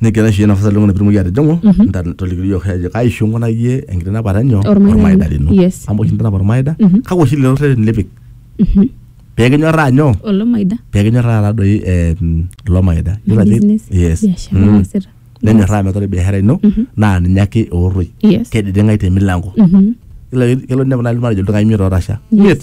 negira aishooyo nafasi oleng natumoki atijing'u Mhm. nta- tolikio yiok ajo kai oshi inkunayie enkitanapata enyo Ormaida ormaida lino. lino Yes. amu oshi intanap ormaida Mhm. kake oshi lelo rreteni lipik Mhm. pekinyorraa nyoo olomaida pekinyorraa taadoi eh, mm, ilo maida Yiolo ajo- business yes biashara Mm. naasita nenyorraa metaa ore biashara ino Mhm. naa ninye ake eorroi yes kediding'ai te milango Mhm. Yiolo- kelo ninepu naaji matejo ildukai imiet ootasha Yes. imiet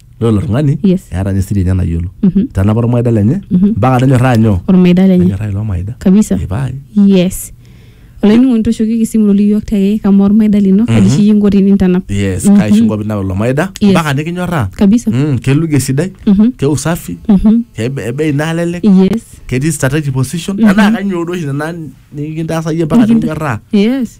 Ore ilo tung'ani Yes. eeta ninye siri enye nayiolo. Mhm. Tenapa ormaida lenye Mhm. mpaka nenyorraa nyoo? ormaida lenye Nenyorraa ilo maida. kabisa Ee pae. yes olainining'oni toshokieki esimu loli iyiook te kamaa ormaida lino kaji Mhm. shiyi inko tinintanap Yes, Mhm. kaisho nkop ina ilo maida Yes. mpaka nikinyorraa. kabisa Mm, keluge esidai, Mhm. ke usafi, Mhm. ke be- bei nalelek, yes ketii strategic position. Mhm. Enaa kanyoo duo oshi nena nikintaasa iyie mpaka Nikinta- nikinyorraa. yes